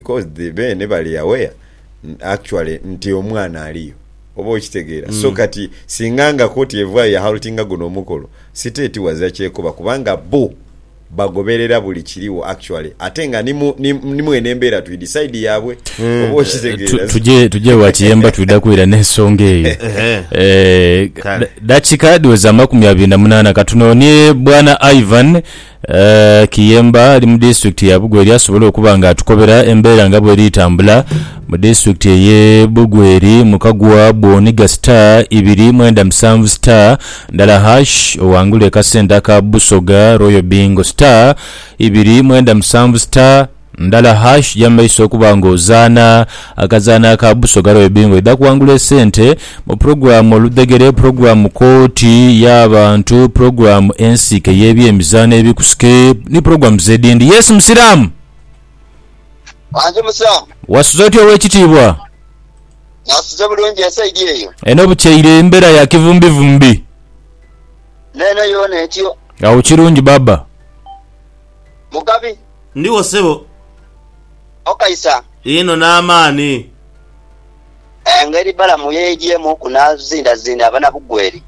Coz the beene bali aware actually nti omwana aliyo oba okitegeera so kati singa nga kooti evaayo ya haltinga guno omukolo siteti wazira kyekoba kubanga bbo bagoberera buli kiriwo actually ate nga ni mu eno embeera twidi side yabwe oba okitegeera so Tuje wa kiyemba twida kwira n'ensonga eyo Kale. Dakika dhiweze amakumi abiri na munaana katunonie bwana Ivan Kiyemba ali mu disitulikiti ya Bugweri asobole okuba nga atukobera embeera nga bweri tambula mu disitulikiti eye Bugweri mu kagwa bwoniga star ibiri mwenda musanvu star ndala harsh owangule kasente aka Busoga Royal Bingo star ibiri mwenda musanvu star Ndala hash jamaiso okuba nga ozaana akazaano aka Busoga Royal Bingo edha kuwangula esente mu pulogulaamu Oludhegere, pulogulaamu Kkooti y'abantu, pulogulaamu Ensiike y'ebyemizaano ebikusike ni pulogulaamu z'edindi. Yes Musiraamu! Wange musiraamu. Wasuze otya ow'ekitiibwa? Nasuze bulungi esaidi eyo? Eno bukyeire mbera ya kivumbivumbi. N'eno yoona etyo. Agho kirungi baaba. Mugabi. Ndigho sebo. Okaisa. Inho n'amaani. Engeri Balamu y'eyaigyemukku n'azindazinda abanabugweri,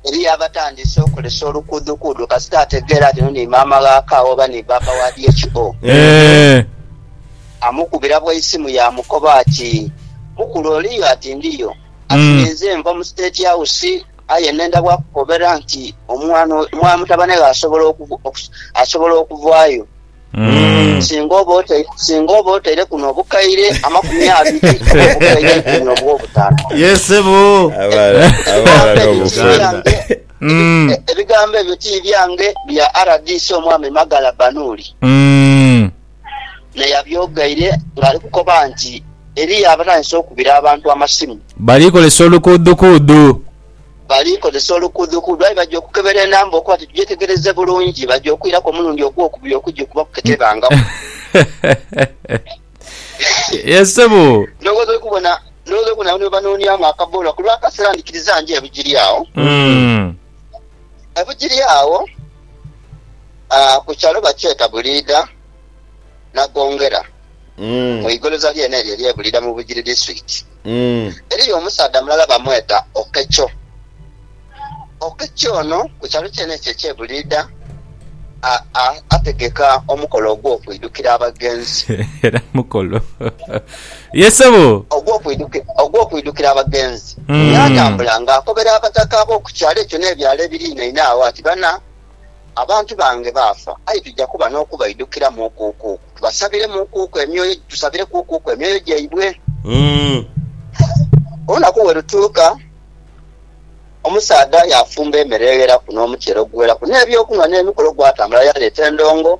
eriyo abatandise okolesa olukuudukuudu kasita ategeera nti ono ni maama gha Kaawa oba ni bbaabba wa DHO. Amukubira bwa isimu yaamukoba ati, Mukulu oliyo? Ati, Ndiyo. Ati, Ninze nva mu State House. Aye nenda bwa kukobera nti omwana oyo, mutabane ghe asobola asobola okuvaayo singa oba otaire singa oba otaireku n'obukaire amakumi abiri oba obukaire eikumi oba obutaano. Ye ssebo. Ebigambo ebyo ti byange, bya rdc omwami Magala Banuuli. na yabyogaire ng'ali kukoba nti eriyo abatandise okubira abantu amasimu. Bali kozesa olukuudukuudu. Bali kozesa olukuudukuudu aye baja okukebera enamba okuba nti tugyetegereze bulungi, baja okwiraku omulundi ogwokubiri okugikubaku ketebangaku. Ye ssebo. Ndhoghoza oli kubona, ndhoghoza oli kubona abano bwebanooniamu akaboola kulw'akaseera ndhikiriza nje ebugiri agho. Ebugiri agho. Ku kyalo bakyeta Buliidha Nagongera mu igoloza lyene eryo erye Buliidha mu Bugiri Disiturikiti. Eriyo omusaadha mulala bamweta Okekyo. Okekyo ono ku kyalo kyene ekyo ekye Buliidha ategeka omukolo ogw'okwidhukira abagenzi. Ye sebo. Ogw'okwidhukira abagenzi. Yaatambula ng'akobera abataka ab'oku kyalo ekyo n'ebyalo ebiriinaine agho ati, Bana, abantu bange baafa, aye tuja kuba n'okubaidhukira muukuuku, tubasabire muukuuku emyoyo, tusabire kuukuuku emyoyo gyaibwe. Olunaku bwe lutuuka, omusaadha yaafumba emere egheraku n'omukyere oguweraku, n'eby'okunhwa n'emikolo, gwatambula yaaleeta endongo.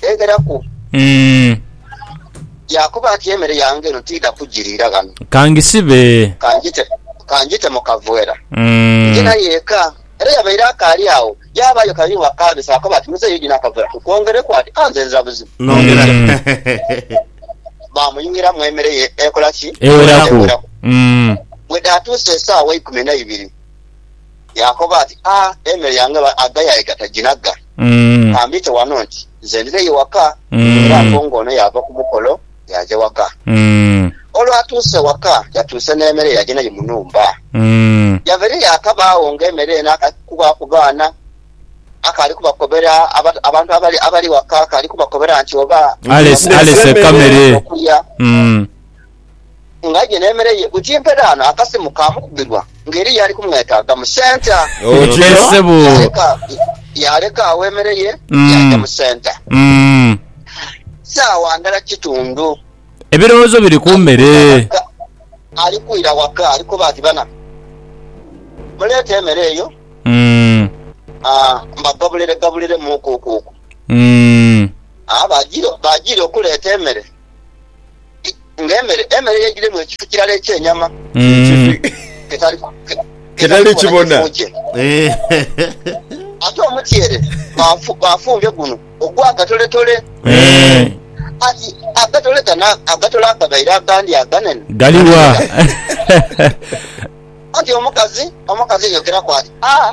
Teegheraku. Umm. Yaakoba ati, Emere yange eno tiidha kugiriira ghano. Ka ngisibe. Ka ngite, ka ngite mu kaveera. Umm. Nje nayo eka. Era yabaire akaali agho, yaabaayo kabiri bwa kaabisa. Yaakoba ati, Muzeeyi oidhi n'akaveera tukwongereku? Ati, Ah, nze nzira buzibu. Nongera. Baamuyuwiramu emere ye ekola ki? Eweraku. Bwe dhaatuusa esaawa eikumi na ibiri. Yaakoba ati, A, emere yange aghayaye gataginagga. Ka mbiite wano nti nze ndireyo waka. Era apo ng'ono yaava ku mukolo yaaja waka. Olwatuuse waka, yatuuse n'emere yaja nayo mu nhumba. Yava eyo yaakabaagho ng'emere eno akaali kukuba ku baana, akaali kubakobera abantu abali waka, akaali kubakobera nti oba. Alese emere okulya. ng'aidye n'emere ye ku kimpe dhaano akasimu kaamukubirwa ng'eriyo eyali kumwetaaga mu senta. Otyo ssebo. Yaleka yaleka agho emere ye yaaja Mm. mu senta. Mm. Saawa ndala kitundu Ebirowoozo biri ku mere. waka, ali kwira waka ali koba ati, Bana, muleete emere eyo Mm. ah, mbagabuliregabuliremu kuukuuku. Mm. Ah, baajiire baajiire okuleeta emere. ng'emere, emere y'egiremu ekifu kirala eky'enyama Ekifi- ketali Ketali kibona. kifu kye. Ate omutyere bafu- bafumbye guno ogw'akatoletole. Eh, Ati agatole gano agatole agabaire agandi aganene. Galiwa? Anti omukazi omukazi yayogeraku ati, Ah,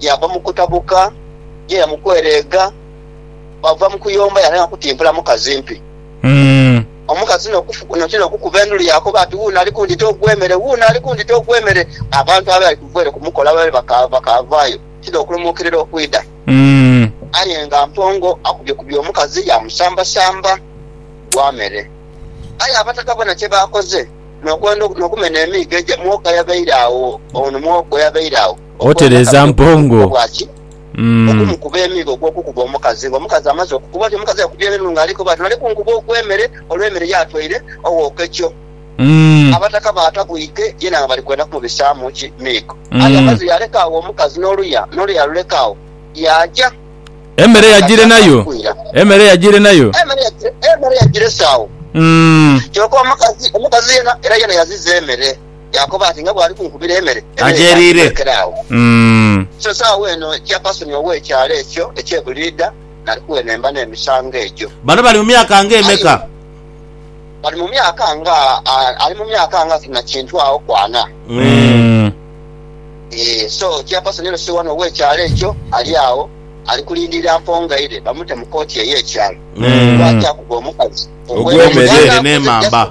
Yava mu kutabuka yaira mu kwereega, bwava mu kuyomba yatandika kutimpula mukazi mpi. Omukazi noti n'okukuba endulu yaakoba ati, Wuuno ali kundhita ogwe mere! Wuuno ali kundhita ogwe mere! Abantu abaali kuva ere kumukola baali bakaavaayo ti n'okulumuukirira okwidha. Aye nga Mpongo akubyekubye omukazi yaamusambasamba gwa mere. Aye Abataka boona kye baakoze n'okwenda n'okumena emiigo egyo, mwoka yabaire agho, ono mwogo yabaire agho. Otereeza mpongo. Okumukuba emigo ogw'okukuba omukazi. Ng'omukazi amaze okukubwa ati omukazi aye kubye n'enhungu ali koba ati nali kunkuba ogw'emere olw'emere y'atwaire ow'okekyo. Abataka baatabwike yena nga bali kwenda kumubisaamu ki? Miigo. Aye amaze yaaleka agho omukazi n'oluya, n'oluya yaaluleka agho, yaaja. Emere yajiire nayo? Emere yajiire nayo? Emere yagirese agho. Kyoka omukazi, omukazi yena era yena yaziza emere. Yaakoba ati, Nga bw'ali kunkubira emere, emere etandiire erekere agho. So saagho eno kyapasoni ow'ekyalo ekyo eky'e Buliida nali kuwenhemba n'emisango egyo. Bano bali mu myaka nga emeka? Bali mu myaka nga, ali mu myaka nga na kintu agho ku ana. Ee, so kyapasoni eno si wano ow'ekyalo ekyo, ali agho, ali kulindirira mpongaire bamute mu kooti ey'ekyalo, kuba akyakuba omukazi ogw'emere n'emamba.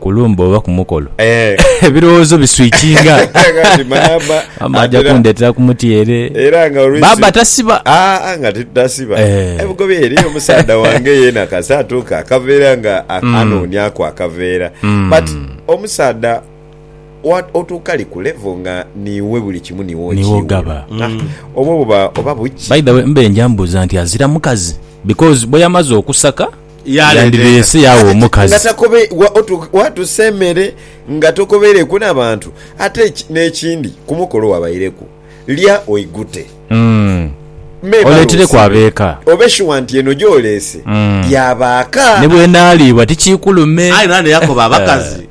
ku lumbe oba ku mukolo Eh. ebirowoozo biswikinga Kati maama maama ajja atera- kundetera ku mutyere era nga olwisi baaba tasiba Aa, nga tetutasiba Eh. ebugobi eriyo omusaadha wange yena kasa atuuka akaveera nga a- Mm. anoonyaku akaveera Mm. but omusaadha wa- otuuka li ku level nga niiwe buli kimu niwe Niwe okiiwe. ogaba. Ah, Mm. obwo buba oba buki by the way mbe nja mbuuza nti azira mukazi because bweyamaze okusaka yandibese yaagha omukazi. Waatusa emere nga tokobeireku na bantu. Ate n'ekindi, ku mukolo wabaireku, lya oigute. Memale osiibe. Obe shuwa nti eno gy'oleese ya baaka. Ni bw'enaaliibwa tikiikulume. Aye naane yakoba abakazi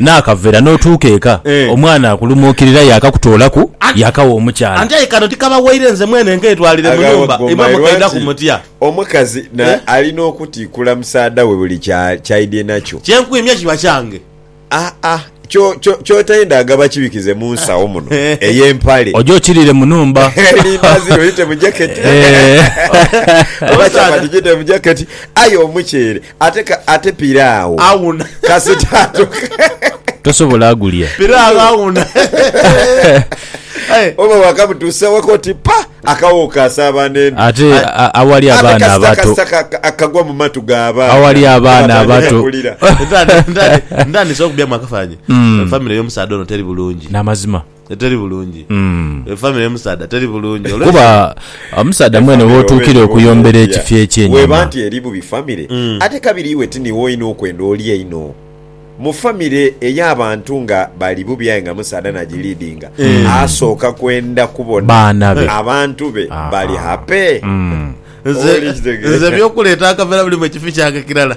naakaveera n'otuuka eka omwana akulumuukirira yaakakutoolaku yaakawa omukyala. Aye kano tikabawaire nze mwene nkeetwalire mu nhumba imwe mukaidhaku mutya? Omukazi alina okutiikula musaadha we buli ky'aidhye nakyo. Kye nkwimye kiba kyange. Aa, ky'otenda nga bakibikize mu nsawo muno ey'empale. Oje okirire mu nhumba. Elindazi lyo lite mu jaketi oba chapati jite mu jaketi aye omuceere. Ate ka, ate piraawo Awuna. kasita atuka. Tosobola gulya. Piraawo awuna. Aye, Oba wakamutuusa waka oti pa, akawo kaasaaba n'endi. Ate a- a- awali Ate abaana kasita abato. kasita ka- ka- akagwa mu matu g'abaana. Awali abaana Batandika abato. kulira. ntandi- ntandi- ntandise okubyamu akafanyi. Mm. Famire y'omusaadha ono teri bulungi. N'amazima. eteri bulungi, efamire y'omusaadha teri bulungi. Kuba omusaadha mwene w'otuukira okuyombera ekifo eky'enyuma. Bw'eba nti eri bubi famire, ate kabiri iwe ti niiwe olina okwenda oli einho. Mu famire ey'abantu nga bali bubi aye nga musaadha n'agiliidinga, asooka kwenda kubona abantu be bali hape. Nze eby'okuleeta akavera biri mu kifo kyange kirala.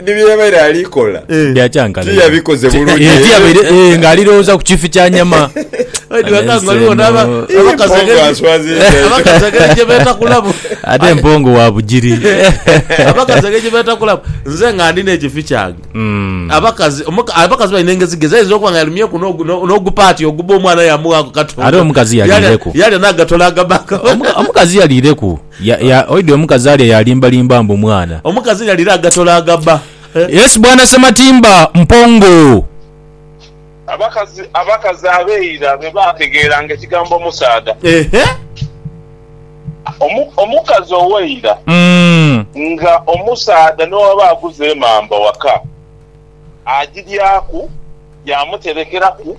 Ni bye yabaire ali kola tiyabikoze bulungi. Eh, tiyabaire eh, nga alirowooza ku kifi kya nyama ate empongo wa bugiri abakazi ege gyebetakulamu nze nga ndina ekifi kyange hmm. abakazi abakazi balina engezi gezi ayinza okuba nga yalumyeku n'ogupaati oguba omwana yamuwaku katonda ate omukazi yalireku yalya nagatola agabaka omukazi yalireku Ya, ya, oidhi omukazi alya yalimba limba mbu mwana. Omukazi nga alira agatola agabba eh. Yes bwana Ssematimba mpongo. Abakazi, abakazi abeira be baategeeranga ekigambo omusaadha. Ehe. Omu, omukazi ow'eira. Umm. Nga omusaadha n'owaba aguza emamba waka, agiryaku, yaamuterekeraku.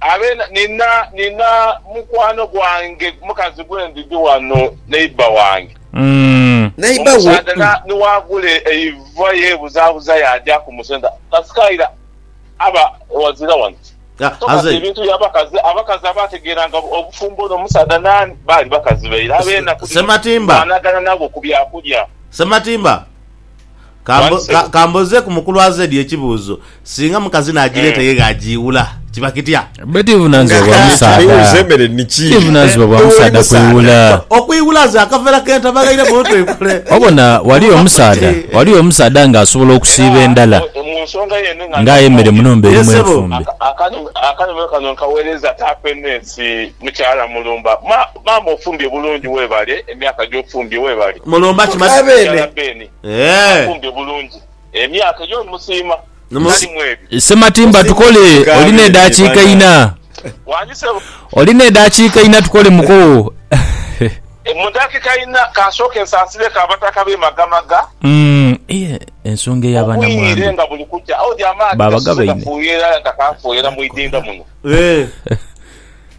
Abe na, nina, nina mukwano gwange, mukazi gwe ndidhi wano, neighbour wange. Mm. Neighbour wo, Omusaadha na, mm. ni waagula eiva yeebuzabuza yaaja ku musenta. Kasika ira aba wazira wano. Ah, So kati aze. ebintu bya bakazi, abakazi abaategeeranga obufumbo n'omusaadha naani, baali bakazi be ira. Abe Se, na, ku dhino Ssematimba. baanagana nabo ku byakulya. Ssematimba. Ka mbozeeku mukulu Azedi ekibuuzo, singa mukazi n'agireeta ye gh'agiiwula, kiba kitya? Bwedhi buvunaanyizibwa bwa musaadha kwiiwula. Okwiiwula ze akavera k'entama ghaire muntu aikule. Obona, ghali omusaadha, ghali omusaadha ng'asobola okusiiba endhala ng'ayemere mu nhumba erimu enfumbe. Maama ofumbye bulungi webale emyaka gyofumbye webale. Mulumba ki Beene. Mukyala Beene afumbye bulungi emyaka eyo omusiima tali mwebyo. Ssematimba tukole oli nedakiika ina. Wani ssebo. Oli nedakiika ina tukole muko. Mudakika ina kansooke nsansireku abataka be Magamaga. Ensonga eya banamwandu babagabaine.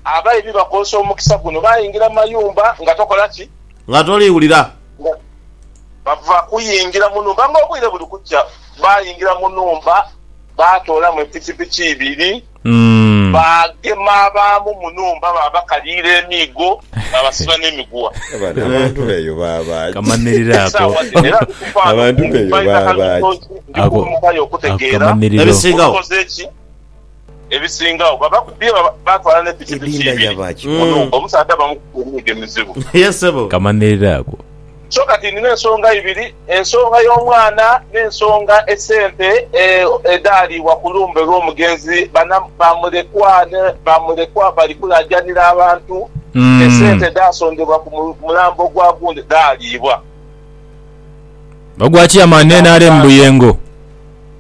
Abaibi bakozesa omukisa guno baingira mu mayumba nga tokola ki? Nga toliwulira. Nga bava kuyingira mu nhumba nga obwire buli kukya, baayingira mu nhumba baatoolamu epikipiki ibiri, baagema abaamu mu nhumba baabakaliira emiigo, baabasiba n'emiguwa. Abantu b'eyo baaba ki? Ebisingawo. ebisingagho babakubye baatwala ne pikipiki ibiri munhumba omusaadha bamukubye emiigo emizibu. Ye sebo. Kamanhirire ako. So kati nina ensonga ibiri, ensonga y'omwana n'ensonga esente edhaaliibwa ku lumbe lw'omugenzi. Bana ba mulekwa ni ba mulekwa bali kulaajanira abantu, esente edhaasondebwa ku mulambo gwa gundi dhaaliibwa. Ogwa Chairman nrm Buyengo.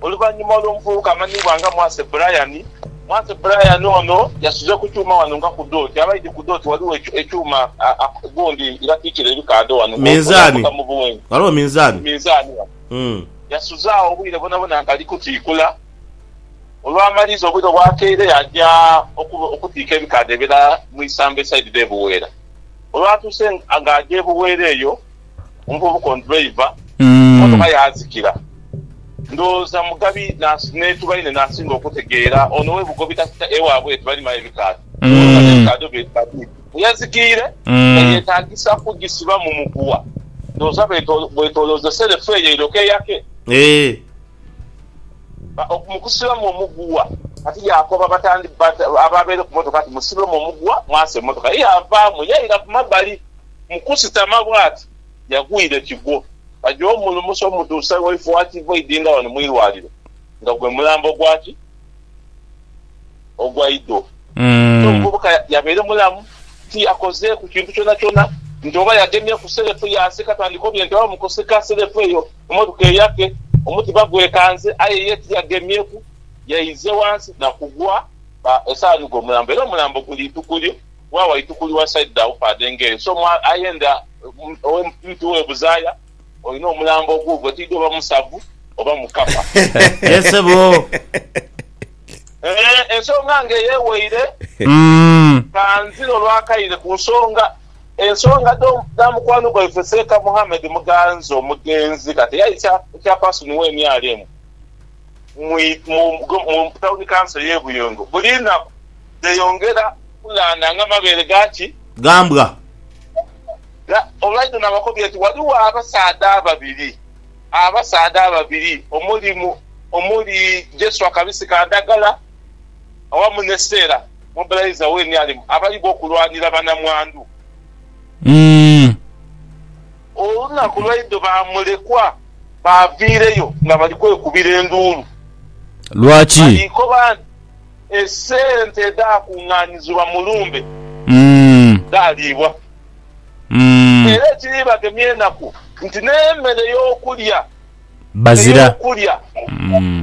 Oluvannyuma olw'omuvubuka amanyibwa nga Mwase Brian, Mwase Brian ono yasuze ku kyuma ghano nga ku doti, aba aidhi ku doti ghaligho ekyuma gundi ye batiikira ebikaadho ghano nga oyavuga mu buwenje, ghaligho minzaani ghano, yasuze agho obwire bwonabwona nga ali kutiikula, olwamaliza obwire obwakeire yaaja okutiika ebikaadho ebirala mu Isambo esaidi dhe Buweera, olwatuuse nga aja e Buweera eyo. omuvubuka ono driver motoka yazikira ndowooza Mugabi netubaine nasinga okutegeera ono webugobi kasita ewabwe tebalimayo ebikaadho emotoka nebikaadho bye Mugabi weyazikiire nga yetagisa kugisiba mu muguwa ndowooza bwetolooze self eyo eiroke eyake mukusibamu omuguwa kati yakoba ababeere ku motoka nti musibemu omuguwa mwase emotoka ye yavaamu yaira kumabali. Mu kusitama bw'ati, yagwire kigwo. Baja omulumusa omutuuse waife owa tivoidi nga wano mu irwaliro, nga gwe mulambo gwa ki? Ogwa idho. Aye omuvubuka yabaire mulamu, tiyakozeeku kintu kyonakyona, nti oba yagemye ku selefu yaasika, tandika obye nti oba mu kusika selefu eyo emotoka eyake, omutima gwekanze, aye ye tiyagemyeku, yaize wansi na kugwa, ba, esaawa nigwo omulambo. Era omulambo guli ituku lyo. wa waitu kuli wa side dha Ufade ng'eyo so mu aye ndha owe mtu we Buzaya olina omulambo oguugwo tiidhi oba musavu oba mukapa. Ye sebo. Eeh ensonga ng'eyo eweire. Umm. Kanzire olwakaire ku nsonga ensonga dho dha mukwano gwaife Seeka Muhammed Muganza omugenzi kati eyaita chairperson we nrm mu Tawuni Kanso y'e Buyungo buli naku dheyongera kukungaana nga mabeere ga ki? Ga mbwa. Olwaidha n'abakobia nti ghaligho abasaadha ababiri, abasaadha ababiri omuli omuli Jeswa Kabisi Kandagala awamu ni Stella Mobilizer Wenialimu abaligho okulwanira banamwandu. Olunaku lwaidho ba mulekwa baaviireyo nga bali kwekubira enduulu. Lwaki? Baliikoba nti, Esente edhaakungaanizibwa mu lumbe dhaaliibwa. Era ekiriibagemya enaku nti n'emere y'okulya Bazira. ey'okulya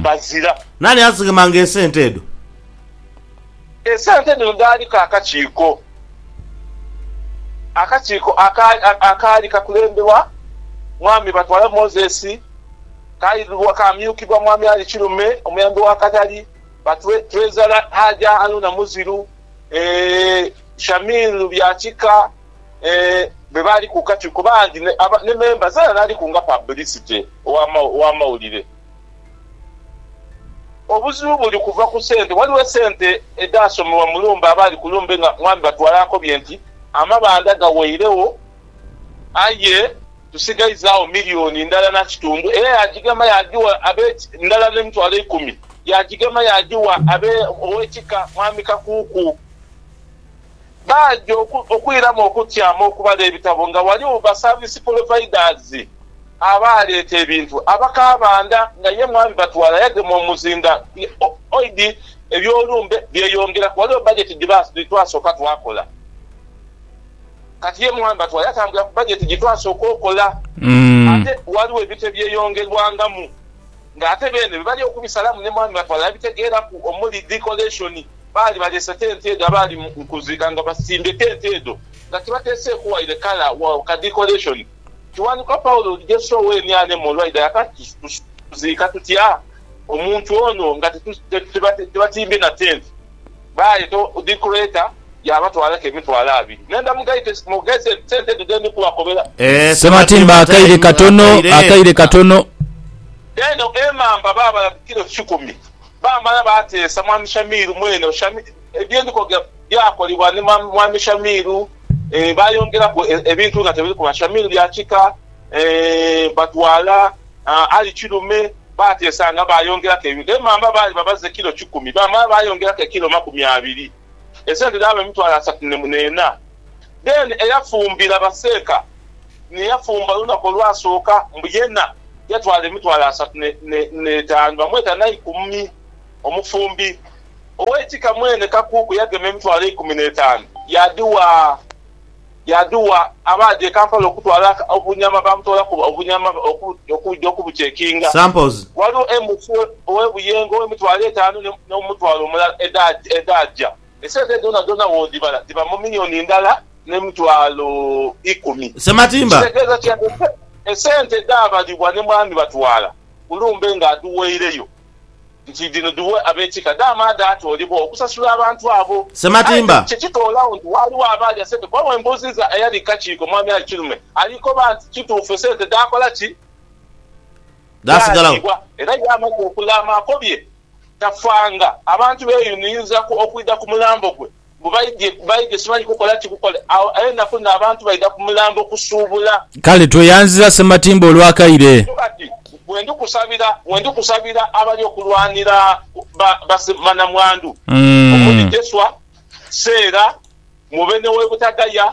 bazira. Naani azighemanga esente edho? Esente dhino dhaaliku akakiiko akakiiko akaali kakulemberwa Mwami Batwala Moses, kaali kaamyukibwa Mwami Ali Kirume, Omuyambi wa Katali, Batwezala Haja Haruna Muziru, Shamir Lubyakika be baali ku kakiiko bangi ne memba zeena naaliku nga pabulisite ow'amawulire. Obuzibu buli kuva ku sente. Waliwo esente edhaasomebwa mu lumbe abaali ku lumbe nga mwami Batwala akobye nti, Amabanda gaweiregho aye tusigaizagho milioni ndala na kitundu era yaagigema yaagigha abe ndala n'emitwalo eikumi yaagigema yaagigha abe ow'ekika mwami Kakuuku. baaja okwiramu okutyama okuba n'ebitabo nga ghaligho basaavisi polovaidaz abaaleeta ebintu. Abakabanda nga ye mwami batwala yagema omuzinga oidi eby'olumbe byeyongeraku. Ghaligho bajeti dhi twasooka twakola. Kati ye mwami batwala yatambulira ku bajeti gye twasooka okola. Ate ghaligho ebintu ebyeyongerwangamu. nga ate beene bye bali okubisalamu ne mwami batwala abitegeeraku omuli decoration. Baali baleese tenti edho abaali mu kuziika nga basimbye tenti edho nga tibateeseeku waire kala wa ka decoration. Kiwanuka Paulo oti Jesu oweni ale mu olwaidha yaka tuziika tutya omuntu ono nga tebatimbye na tenti? Baayeta dhi Kreta, yaabatwalaku emitwalo abiri. Ne ndamughayo ti, Mugheese sente edho dhe ndi kubakobera. Ssematimba akaire katono, akaire katono. Eno emamba baabala ku kilo kikumi. Baamala baateesa Mwami Shamiru mwene. Bye ndi kwogera byakolebwa ni Mwami Shamiru. Baayongeraku ebintu nga tebiri kuba Shamiru bya kika. Batwala Ali Kirume. Baateesanga baayongeraku ebintu. Emamba baali babaza ekilo kikumi, baamala baayongeraku ekilo makumi abiri, esente dhaaba emitwalo asatu n'ena. Then eyafumbira Baseeka ni yafumba olunaku olwasooka, mbu yena yatwala emitwalo asatu n'etaanu. Bamweta Naikumi omufumbi. Ow'ekika mwene Kakuuku yagema emitwalo eikumi n'etaanu yaadhigha yaadhugha abaadha e Kampala okutwala obunyama baamutoola ku obunyama okudhi okubucekinga. Samples. Ghaligho Emufu ow'e Buyengo ow'emitwalo etaanu ne n'omutwalo omulala edhaagya edhaagya. Esente dhoonadhoona bw'odhibala dhiba mu miyoni ndala n'emitwalo ikumi. Ssematimba. Kitegeeza ki? Esente dhaabalibwa ne mwami Batwala ku lumbe ng'adhuweireyo. nti dhino dhiwe ab'ekika dhaama dhaatoolebwa okusasula abantu abo. Aye Sematimba. kati kye kitoolagho nti waaliwo abaalya sente kuba bwe mbuuzizza eyali ku kakiiko Mwami Ali Kirume alikoba nti kituufu esente dhaakola ki? Dhaasigalagho. Dhaaliibwa era ye amaze okulaama akobye tafanga abantu beeyuniinzaku okwidha ku mulambo gwe Mbu baidhye baidhye simanyi kukola ki kukole. Agho enaku dhino abantu baidha ku mulambo kusuubula. Kale tweyanziza Ssematimba olwa kaire. Kyo kati bwendi kusabira bwendi kusabira abali okulwanira ba ba banamwandu omuli Jeswa, Seera, Mubene w'e Butagaya,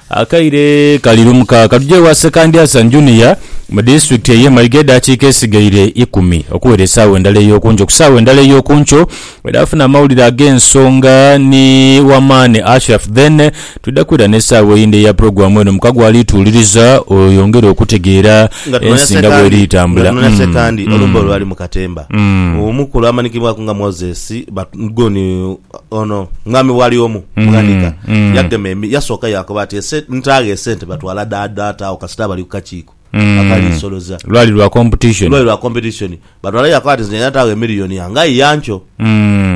Akaire kali lumu kaaka tuje ewa Ssekandyasa Junior mu disitulikiti ey'e Mayiga edaakiika esigaire ikumi okuwera esaawa endala ey'okunkyo. Ku saawa endala ey'okunkyo bwedhafuna amawulire ag'ensonga ni wamaani Ashraf then twidha kwira n'esaawa eyindi eya pulogulaamu eno muka gwali tuwuliriza oyongere okutegeera ensi nga bweri etambula. Nga tunoonia Sekandi, olumbe olwali mu katemba, omu ku lwamanikibwaku nga Moses Batgon, Ono Mwami bwali omu mughanika yagema emi, yasooka yaakoba ati, Ese ntaagho esente batwala dha data agho kasita bali ku kakiiko akali isoloza. Lwali lwa competition. Lwali lwa competition. Batwala yaakoba ati, Nze ntaagho emillion yange aye yankyo.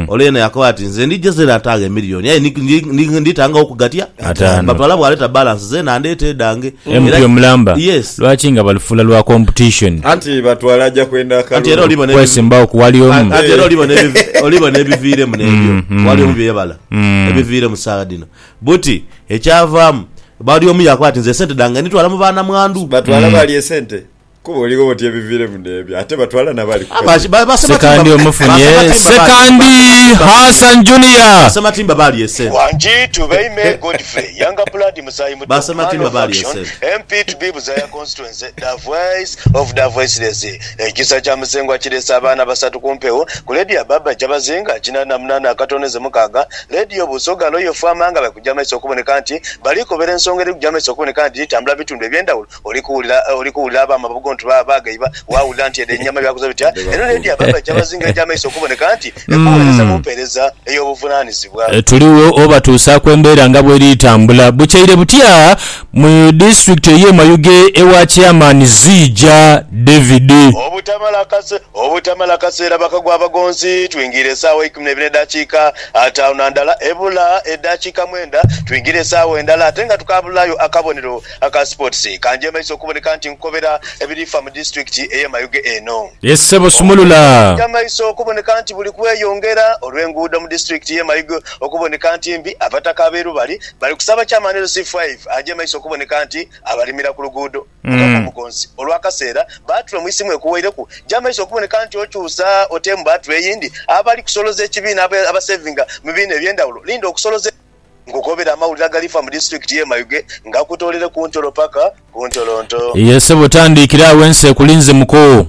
Ole yena yaakoba ati, Nze ndija zera ntaagho emillion aye ndi, ndi, ndi, nditangagho ku gatya? Ataano. Bapala bwaleta balance zena andeete edhange. MP Era- omulamba Yes. lwaki nga balufuula lwa competition Anti batwala aja kwenda Anti era akalulu. olibona ebivi- kwesimbawo ku wali omu Anti era olibona ebivi- olibona ebiviiremu n'ebyo Mm, mm. wali omu byebala Mm. ebiviiremu saawa dhino buti ekyavaamu bali omu yakoba ati nze esente dhange nditwala mu baana mwandu Batwala bali esente. Kuba oligho oti ebiviremu n'ebyo ate batwala n'abali ku Abaji- kazito. ba- ba Sekatimba- Sekandi ba omufunye Sematimba ba- Sekandi Sematimba ba- Hassan Ba Junior. Sematimba baalya esente. Wangi to by me Godfrey younger blood musaayi muto Ba man Sematimba of baalya action esente. MP to be Buzaya constituency da voice of da voiceless Ekisa kya Musengwa kireese abaana basatu ku mpewo ku leediyo ya Barbra Kyabazinga kinaana na munaana akatono ze mukaaga leediyo Busoga Loyal Fama nga bali kugya maiso okuboneka nti bali kobera ensonga eri kugya maiso okuboneka nti dhitambula bitundu ebyendawulo Oli kuwulira, oli kuwulira ab'amabugo nti ba, baagaiba. Waawulira nti edho ennyama byakoze bitya? Eno Leediya baaba aija bazinga egy'amaiso okuboneka nti ekuweereza mu mpeereza ey'obuvunaanyizibwa. Tuligho obatuusaaku embeera nga bw'eri tambula. Bukyaire butya mu disitulikiti ey'e Mayuge ewa Chairman Ziija David. Obutamala kase, obutamala kaseera bakagwa abagonzi, twingiire esaawa eikumi n'eibiri n'edaakiika ataanu na ndala, ebula edaakiika mwenda twingiire esaawa endala ate nga tukaabulaayo akabonero Aka Sports kanjeemaiza okuboneka nti nkukobera ebirifa mu disitulikiti ey'e Mayuge eno. Ye ssebo sumulula. Kinjamaiza okuboneka nti buli kweyongera olw'enguudo mu disitulikiti y'e Mayuge okuboneka nti mbi, abataka ab'e Lubali bali kusaba Chairman LC Five ajeemaise okuboneka nti abalimira ku luguudo. Mukama Omugonzi, olw'akaseera bbaatule mu isimu ekuwaireku, jaamaiza okuboneka nti okyusa oteemu bbaatule eyindi. Abali kusoloza ekibiina abasevinga mu bibiina eby'endhawulo, linda okusoloza. Nkukobera amawulire agalifa mu disiturikiti ye Mayuge ngakutoolere ku ntolo paka ku ntolonto. Iye ssebo tandiikira agho ensi ekulinze mukoo.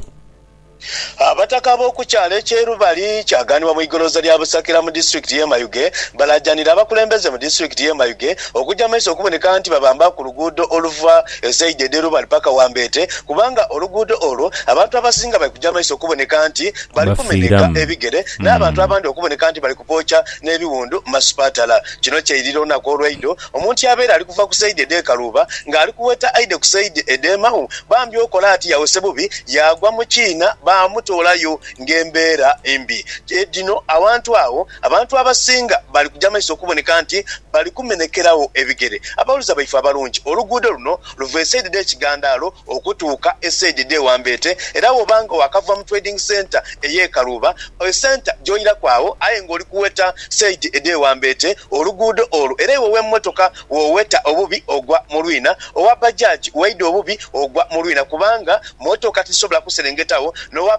Abataka ab'oku kyalo eky'e Rubali kyaganibwa mu igolooza lya Busakira mu disiturikiti ye Mayuge balaajanira abakulembeze mu disiturikiti ye Mayuge okuja maiso okuboneka nti babamba ku luguudo oluva e saidi edh'e Rubali paka Wambeete kubanga oluguudo olwo abantu abasinga bali kuja maiso okuboneka nti bali kumenheka Bafiiramu. ebigere n'abantu abandi okuboneka nti bali kupooca n'ebiwundu mu masipaatala. Kino kyairira olunaku olwaidho omuntu abeere ali kuva ku saidi edh'e Kaluuba nga ali kuweta aidhe ku saidi edh'e Mau bambi okola ati yawese bubi yaagwa mu kiina baamutoolayo ng'embeera mbi. Dhino awantu agho abantu abasinga bali kuja maiso okuboneka nti bali kumenekeragho ebigere. Abawuliza baife abalungi, oluguudo luno luva esaidi dh'ekigandaalo okutuuka e saidi dhe Wambeete era woba nga wakava mu trading centre eye Kaluuba e centre gyoiraku agho aye nga oli kuweta saidi edhe Wambeete oluguudo olwo era iwe owemotoka woweta obubi ogwa mu lwina owa bajaj waida obubi ogwa mu lwina kubanga motoka tizisobola kuserengetagho nowa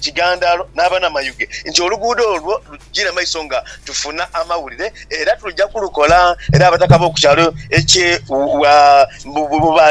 Kigandalo n'abanamayuge nti oluguudo olwo lugire maiso nga tufuna amawulire era tuja kulukola era abataka b'oku kyalo ekye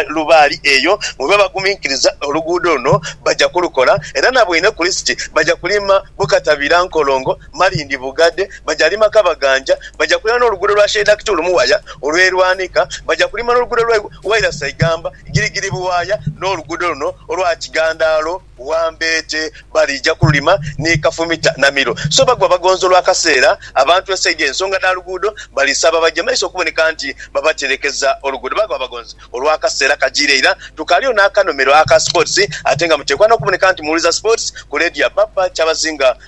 Lubaali eyo bwebaba baguminkiriza oluguudo luno baja kulukola era na bweine kulisiti baja kulima Bukatabira, Nkolongo, Malindi, Bugade, baja lima Kabaganja, baja kulima n'oluguudo lwa Sheikh Daktulu Muwaya olw'e Lwanika, baja kulima n'oluguudo lwa Wairasa Igamba, Girigiri Buwaya n'oluguudo luno olwa Kigandalo. Wambeete baliija kululima ni Kafumita na Milo. So bagwa bagonza olwa kaseera abantu e Saiga ensonga dha luguudo balisaba baje maiso okuboneka nti babaterekeza oluguudo. Bagwa bagonza olwa kaseera kajiire ira tukaaliyo n'akanomero aka Sports ate nga muteekwa n'okuboneka nti muwuliza Sports ku leediyo ya Papa Kyabazinga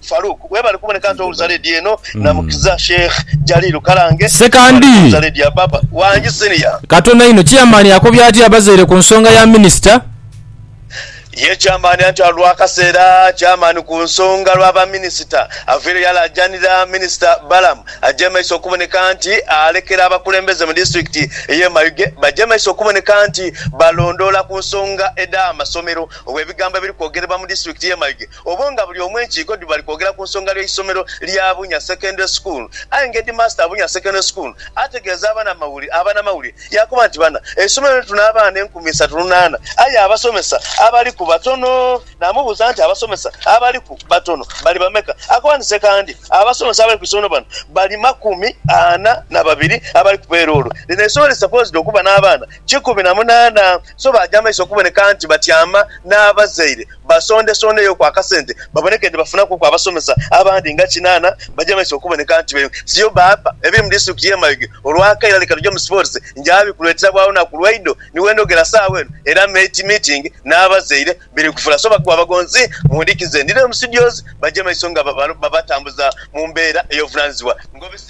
Farouk webale kuboneka nti owuliza lady eno namukiza sheikh jalilu kalange Ssekandi katono inho chairman akobye atya abazaire ku nsonga ya minister? Ye chairman anti alwa kaseera chairman ku nsonga lwa ba minister aveire yalajanira minister Balaam aje maiso okuboneka nti alekera abakulembeze mu district eye Mayuge baje maiso okuboneka nti balondoola ku nsonga eda masomero obwe bigambo ebiri kwogerebwa mu district ye Mayuge Obwo nga buli omu enkiiko dhi bali kwogera ku nsonga y'eisomero lya Bunya Secondary School aye nga Headmaster Bunya Secondary School ategeeza abana mawuli abanamawulire yaakoba nti bana eisomero lino tuna abaana enkumi isatu lunaana aye abasomesa abaliku batono naamubuuza nti abasomesa abaliku batono bali bameka akoba nti sekandi abasomesa abali ku isomero bano bali makumi ana na babiri abali ku peeroolo lino eisomero li supposed okuba n'abaana kikumi na munaana so baaja maiso okuboneka nti batyama n'abazaire basondesondeyoku akasente baboneke nti bafunaku ku abasomesa abandi nga kinaana baja maiso okuboneka nti beyo siyo baapa ebiri mu disitulikiti y'e Mayuge olwakaire leka tuje mu sipootisi njaabi kulwetera bwa lunaku lwaidho ni wendhogera saawa eno era mate meeting n'abazaire biri kufula so bakuba abagonzi mu ndhikize ndidheyo mu studios baje maiso nga babatambuza mu mbeera ey'obuvunanizibwa.